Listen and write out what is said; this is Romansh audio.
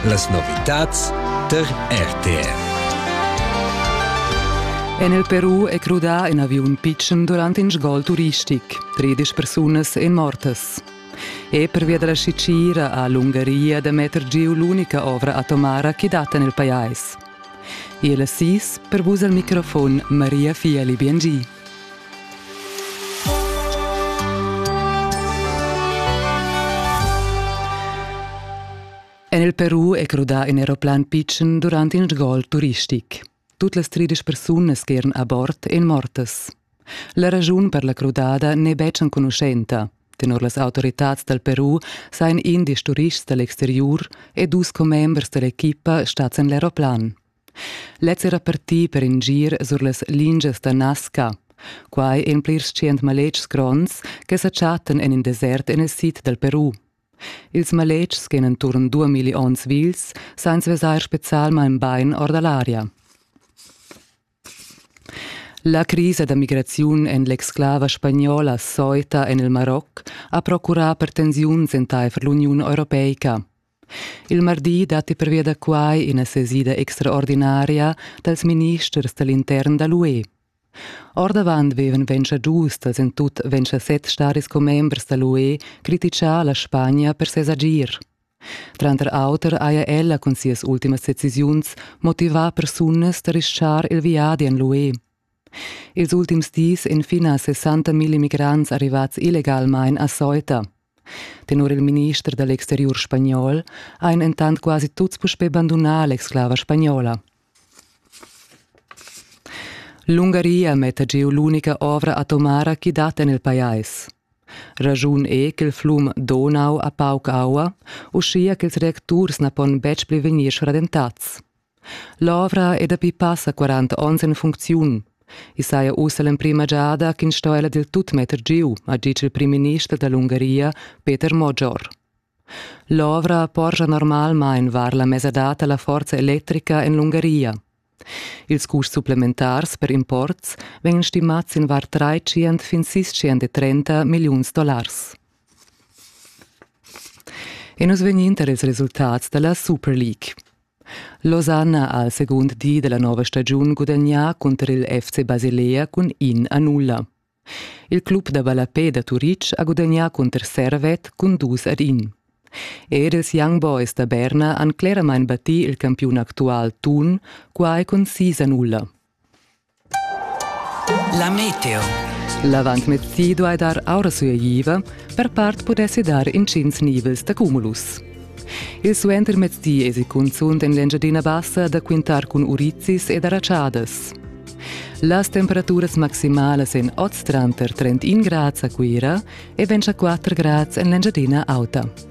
Las novitads tar RTR. En il Peru è crudà in aviun pitschen durant in sgol turistic. Tredisch persunas èn mortas. E pervia da la scicira ha l'Ungaria da metter giu l'unica ovra atomara che dat en il pajais. Il sis per vus al microfon Maria Fieli Biengi. En il Peru è crudà in aeroplan pitschen durant in sgol turistic. Tut las tridisch persunas che eran a bord èn mortas. La raschun per la crudada n'è betg enconuschenta. Tenor las autoritads dal Peru sajan indisch turists da l'exteriur e dus commembers da l'equipa stads en l'aeroplan. Lez era partì per in gir sur las lingias da Nasca. Quai en plirs tschient maletgs gronds che sa chattan en in desert en il sid dal Peru. Ils maletgs che han enturn duamilli onns vils san vesair spezialmain bain or da l'aria. La crisa da migraziun en l'exclava spagnola Soita en il Maroc ha procurà per tensiuns entaifer l'Uniun europeica. Il mardi datti pervia da quai ina sesida extraordinaria dals ministers da l'intern da l'UE. Ordavant vevan ventscha giustas en tut ventscha set staris commembers da l'UE critichà la Spagna per ses agir. Tranter auter haja ella cun sias ultimas decisiuns motivà persunas da rischar il viadi en l'UE. Ils ultims dis ein fina 60.000 migrants arrivats illegalmein a Ceuta. Tenor il minister dall exteriur spagnol ein entant quasi tuts puspei bandunà l'exclava spagnola. L'Ungaria metta giu l'unica ovra atomara chi dat en il pajais. Ragiun è ch'il flum Donau ha pauc aua, uschia ch'ils reacturs na pon betg pli vegnir schradentats. L'ovra è dapi passa quaranta onns en funcziun. I saja ussa l'emprima giada ch'ins sto ella dil tut metter giu, ha ditg il primminister dall'Ungaria, Peter Mogior. L'ovra porscha normalmain var la mesadad alla forza electrica en l'Ungaria. Ils custs supplementars per imports vegnan stimats in var 300 fin 630 milliuns dollars. E nus vegnin tar ils resultats dalla Super League. Losanna ha al segund di della nova stagiun gudagnà cunter il FC Basilea cun in a nulla. Il club da ballapè da Turitg ha gudagnà cunter Servet cun dus ad in. Er ils Young Boys da Berna han cleramain battì il campiun actual Thun, quai cun sis a nulla. La meteo. L'avantmezzi duai dar aura sueiva, per part pudessi dar intgins nivels da cumulus. Il suentermezdi èsi cunzunt en l'Engiadina Bassa da quintar cun urizis e da ratschadas. Las temperaturas maximalas en oz tranter 31 grads a Cuira e 24 grads en l'Engiadina Auta.